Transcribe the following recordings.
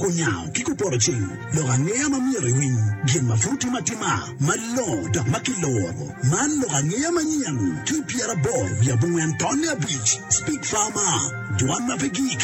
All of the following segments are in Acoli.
Onyao ki kupoto cing lok angeya ma myero iwiny gin ma pud timo atima malongo dok ma kiloro. Man lok angeya manyen ki i pyeraboro wiye abongwen tonne abic. Speak Farmer, Dwan ma pe gik.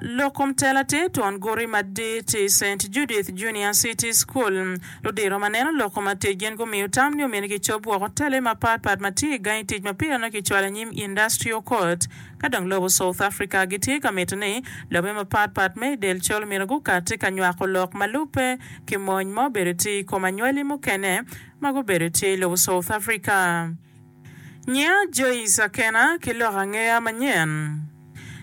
Lok kom tela tye twon guti madit i Saint Judith Junior City School. Ludiro ma neno lok kom atic gin gumiyo tam ni omyero kicob woko tele mapatpat ma tye i gangi tic ma pire nongo kicwalo i nyim Industrial Court. Ka dong lobo South Africa gitye ka mito ni lobe mapat pat me i del col myero gukati ka nywako lok ma lubbe ki mony ma obedo tye i kom anywali mukene ma gubedo tye i lobo South Africa. Nyiya Joyce Akena ki lok angeya manyen.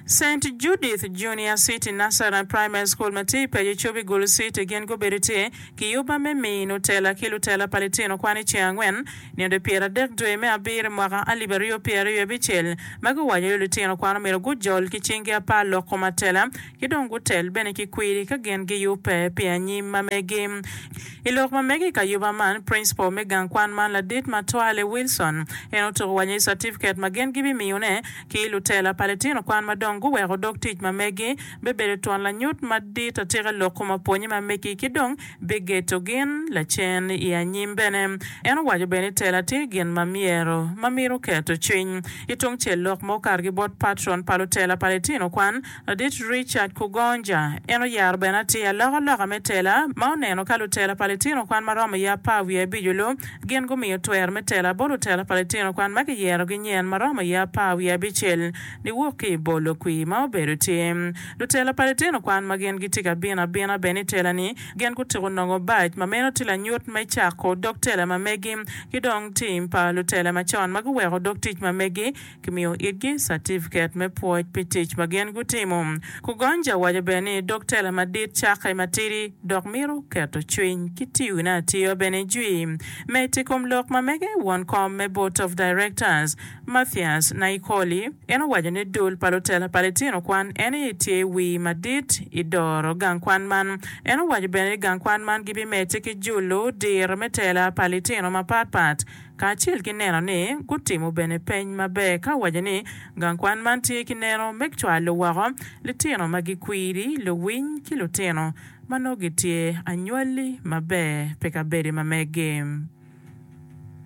Saint Judith Junior City Nursery and Primary School ma tye i paco Cubi Gulu City gin gubedo tye ki yubba me mino tela ki lutela pa litino kwan i ceng angwen Nino pyeradek dwe me abiro i mwaka alip aryo pyeraryo abicel ma giwaco ni lutino kwan omyero gujol ki cingi apar lok kom atela ki dong gutel bene ki kwiri ka gin giyubbe pi anyim ma megi. I lok ma mege i kayuba man, principal me gang kwan man ladit ma twale Wilson en otuko wa ni catifiket ma gin gibimiyone ki lutela pa litino kwan ma dong guweko dog tic ma megi bibedo twon lanyut madit atika lok kom apwonye ma megi ki dong bigeto gin lacen i anyim bene. En owaco bene ni tela tye gin ma myero ma mito keto cwiny. Ki tungcel lok ma okatogi bot patron pa lutela pa litino kwan, Ladit Richard Kugonja, en oyaro bene atir alokaloka me tela ma oneno ka lutela pa litino kwan ma romo iye apar wiye abico lu gin gumiyo twero me tela bot lutela pa litino kwan ma giyerogi nyen ma romo iye apar wiye abicel niwok ki i bolo kwir ma obedo tye. Lutela pa litino kwan ma gin gitye ka bino abina bene i tela-ni, gin gutyeko nongo bac, ma meno tye lanyut me cako dog tela ma megi. Ki dong tim pa lutela macon ma guweko dog tic ma megi, kimiyo itgi catifiket me pwoc pi tic ma gin gutimo. Kugonja owaco bene ni dog tela madit cakke matidi dok mito keto cwiny ki tiyone atiya bene jwi me tic kom lok ma mege won kom me Board of Directors. Mathias Naikoli, en owaco ni dul pa lutela pa litino kwan en aye tye wii madit i doro gang kwan man. En owaco bene ni gang kwan man gibimedde ki julo diro me tela pa litino mapat pat kacel ki neno ni gutimo bene peny maber ka owaco ni gang kwan man tye ki neno me cwalo woko litino ma gikwiri, luwiny ki lutino ma nongo gitye anywali maber pi kabedo ma megi.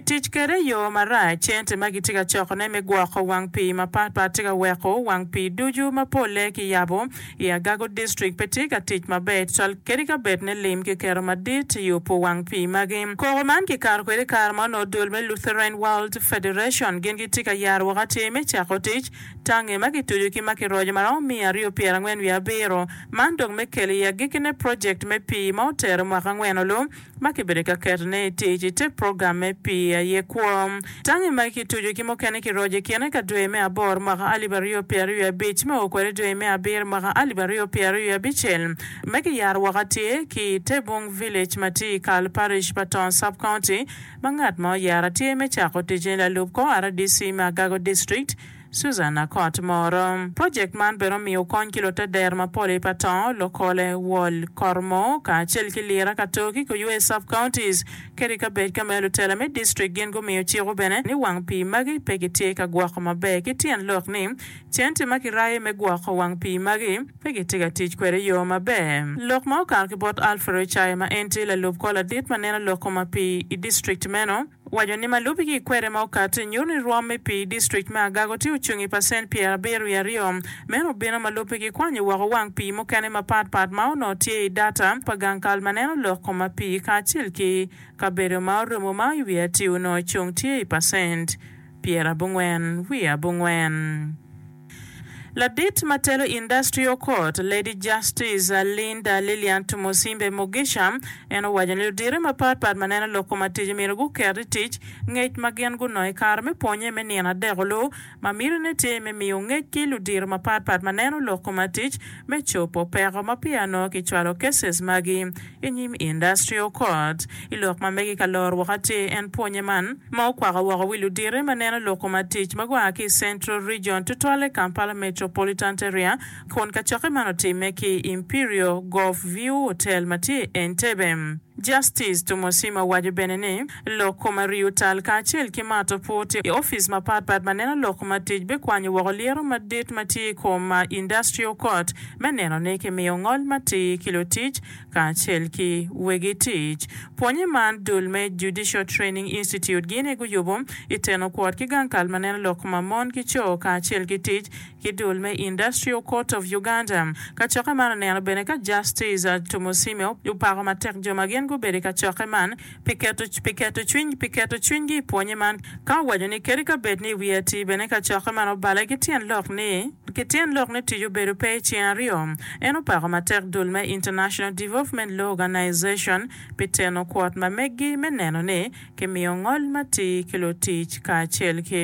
Tic kwede i yo marac. Cente ma kitye ka cokone me gwoko wang pii mapatpat tye ka weko wang pii ducu ma polle kiyabo i Agago District pe tye ka tic maber tutwal kadi ka bed ni lim kiketo madit i yubo wang pii magi. Koko man kikato kwede i kare ma onongo dul me Lutheran World Federation gin gitye ka yaro woko atir me cako tic tangi ma kituco ki ma kiroco ma romo miya aryo pyera angwen wiye abiro man dong me kelo i agikkine project me pii ma otero mwaka angwen olu ma kibedo ka ketone i tic i te program me pii aye kwo. Tangi magi kituco ki mukene kiroco i kine ka dwe me aboro mwaka alip aryo pyera ryo abic me o kwede dwe me abiro mwaka alip aryo pyera ryo abicel me kiyaro woko atye ki i Tebung Village ma tye i kal Parish pa Tong Sub-County ma ngat ma oyera tye me cako ticce lalup kor rdc me Agago District Susan Akot Moro. Project man bene omiyo kony ki lute der mapol i Patong, Lokole, Wol, Kormo, kacel ki Lira, Katoki, Kuywe sub counties, kede i kabed ka meyo lutela me district gin gumiyo ciko bene ni wang pii magi pe gitye ka gwoko maber ki tyen lok ni centi ma kirayo me gwoko wang pii magi pe gitye ka tic kwede yo maber. Lok ma okato ki bot Alfred Ochaya ma en tye lalub kor ladit ma neno lok koma pii i district meno, Waco ni malubi ki i kwede ma okati nyuto ni rwom me pii i district me Agago tye ocung i pacent pyerabiro wiye aryo. Meno obino malubi ki kwanyo woko wang pii mukene mapat pat ma onongo tye i data pa gang kal ma neno lok ko ma pii kacel ki kabedo ma orumo ma i wiye atir onongo ocung tye i pacent pyerabongwen wiye abongwen. Ladit ma telo Industrial Court, Lady Justice Linda Lillian Tumusiime Mugisha, en owaco ni ludito mapat pat ma neno lok kom atic myero guket i tic ngec ma gin gunongo i kare me pwonye me nino adek-olu ma mitine tye me miyo ngec ki ludito mapat pat ma neno lok kom atic me cobo peko ma peya nongo kicwalo cases magi i nyim Industrial Court. I lok ma megi ka loro woko atir en pwonye man ma okwako woko wi luditi ma neno loko ma tic ma gua ki i Central Region tutwalle Kampala Metropolitant Area kun kacokke man otimme ki i Imperial Golf View Hotel ma tye i Entebbe. Justice Tumosima waco bene ni, lok koma riyo tal kacel ki mato pur tye i opic mapat pat ma neno lok koma tic bikwanyo woko lyeto madit ma tye i kom Industrial Court me neno ni kimiyo ngol matir ki lutic kacel ki wegi tic. Pwonye man dul me Judicial Training Institute gini guyubo i teno kwot ki gang kal ma neno lok koma mon ki co kacel ki tic ki dul me Industrial Court of Uganda. Kacokke man oneno bene ka Justice Tumusiime opako matek jo ma gin gubedo i kacokke man pi keto pi keto cwiny pi keto cwinygi i pwonye man ka owaco ni kadi ka bed ni i wiye atir bene kacokke man obale ki tyen lok ni ki tyen lok ni tic obedo pe i ceng aryo. En opako matek dul me International Development Law Organization pi teno kwot ma meggi me neno ni kimiyo ngol matir ki lutic kacel ki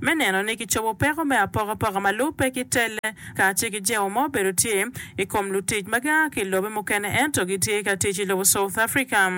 me neno ni kicobo peko me apokapoka ma lubbe ki telle kacel ki jewo ma obedo tye i kom lutic ma gia ki i lobe mukene ento gitye ka tic i lobo South Africa.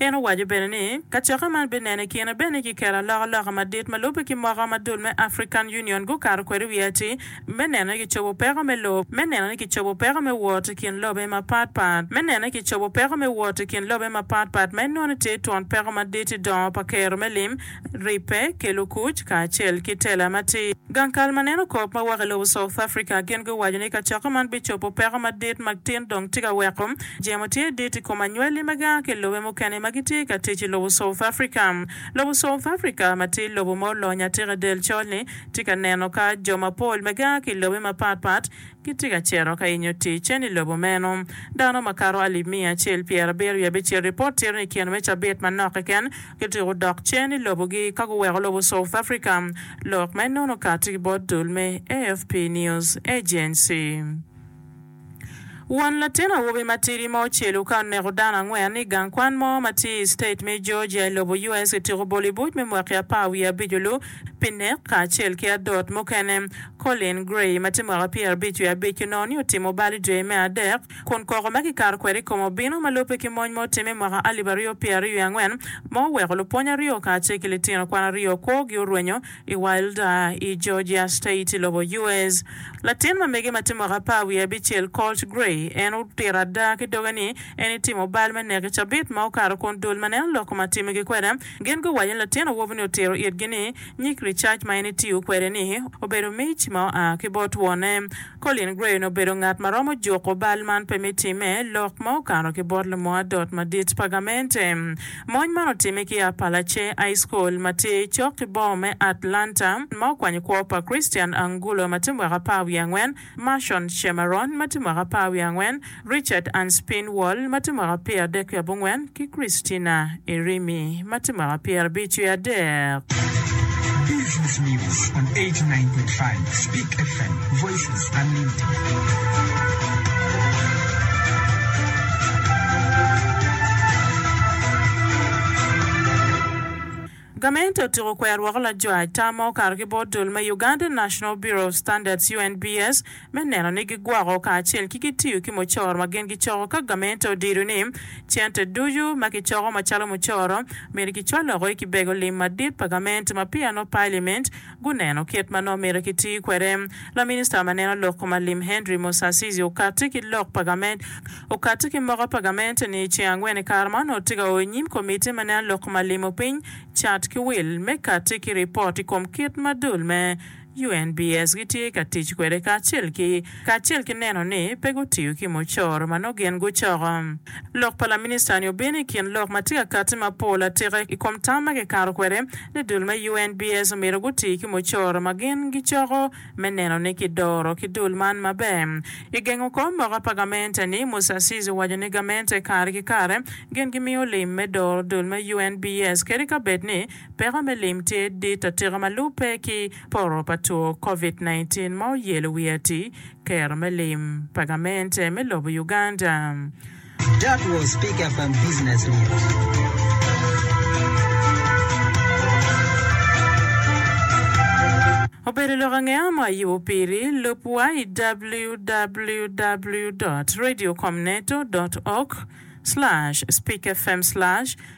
En owaco bene ni, Kacokke man bineno i kine bene ki keto alokaloka madit ma lubbe ki moko ma dul me African Union gukato kwede wiye atir me neno ni kicobo peko me lobo, me neno ni kicobo peko me wot i kin lobe mapatpat, me neno ni kicobo peko me wot i kin lobe mapatpat ma inwono tye twon peko madit i dongo pa kero me lim. ribbe, kelo kuc, kacel ki tela matir. Gang kal ma neno kop ma woko i lobo South Africa gin guwaco ni kacokka man bicobo peko madit ma gtin dong tye ka weko jemo tye dit i kom anywali ma gaa ki lobe mukene ma gitye ka tic i lobo South Africa. Lobo South Africa ma tye lobo ma olony atika i del col-ni tye ka neno ka jo mapol ma gaa ki lobe mapat pat Gitye ka cito ka yenyo ticen i lobo meno. Dano makato alip miya acel pyerabiro i abicel ripot tito ni kine me cabit manok keken, gituko dok cen i lobogi ka guweko lobo South Africa. Lok ma enono okati ki bot dul me AFP News Agency. Won latin awobi matidi ma ocelu ka oneko dano angwen i gang kwan mo ma tye i state me Georgia i lobo US gitiko bolo i buc me mwaki apar wiye abic-olu Pinnick kacel ki adot mukene. Colin Gray ma tye mwaka pyerabic wiye abic onongo ni otimo bal i dwe me adek, kun koko ma kikato kwede i kome obino ma lubbe ki mony ma otimme i mwaka alip aryo pyeraaryo wiye angwen ma oweko lupwony aryo kacel ki litino kwan aryo kwogi orwenyo i Wilder i Georgia State i lobo US. Latin ma mege ma tye mwaka apar wiye abicel, Colt Gray, en otito ada ki doge ni en itimo bal me nek i cabit ma okato kun dul ma neno lok ma timogi kwede Gin guwaco ni latin awobi-ni otito itgi ni nyig ricac ma en etiyo kwede-ni obedo mic ma oa ki bot wonne. Colin Gray-ni obedo ngat ma romo juko bal man pe me timme lok ma okato ki bot lumo adot madit pa gamente. Mony man otimme ki Appalachee High School ma tye cok ki boma me Atlanta ma okwanyo kwo pa Christian Angulo ma tye mwaka apar wiye angwen Marshon Shemaron ma tye mwaka apar wiye angwen, Richard Anspinwall ma tye mwaka pyeradek ki abongwen, ki Christina Irimi ma tye mwaka pyerabic wiye adek. Business News on 89.5 Speak FM, Voices Unlimited. Gamente otyeko kwero woko lajwaj tam ma okato ki bot dul me Ugandan National Bureau of Standards, UNBS, me neno ni gigwoko kacel ki gitiyo ki mucoro ma gin gicoko ka gamente odido ni cente ducu ma kicoko macalo mucoro myero kicwal oko i kibego lim madit pa gamente ma peya nongo Pailiment guneno kit ma nongo myero kiti kwede. Laminista ma neno lok ma lim Henry Musasizi okatti ki lok pa gament okatti ki moka pa gament ni i ceng angwen i kare ma onongo tye ka oyo nyim komitti ma neno lok ma limo piny cat ki wil me katti ki ripot i kom kit ma dul me UNBS gitye ka tic kwede kacel ki kacel ki neno ni pe gutiyo ki mucoro ma nongo gin gucoko. Lok pa laminista-ni obino i kin lok ma tye ka katti mapol atika i kom tam ma kikato kwede ni dul me UNBS omyero guti ki mucoro ma gin gicoko me neno ni kidoro ki dul man maber. I gengo kor moka pa gamente-ni, Musasizi owaco ni gamente kare ki kare gin gimiyo lim me doro dul me UNBS kadi ka bed ni peko me lim tye dit atika ma lupe ki Poro pa two Covid nineteen ma oyelo wi ati kero me lim pa gamente me lobo Uganda. That was Pick Up and Business News. Obedo lok angeya ma ayubo piri? Lubwa i www dot radio com neto dot org slash speak fm slash.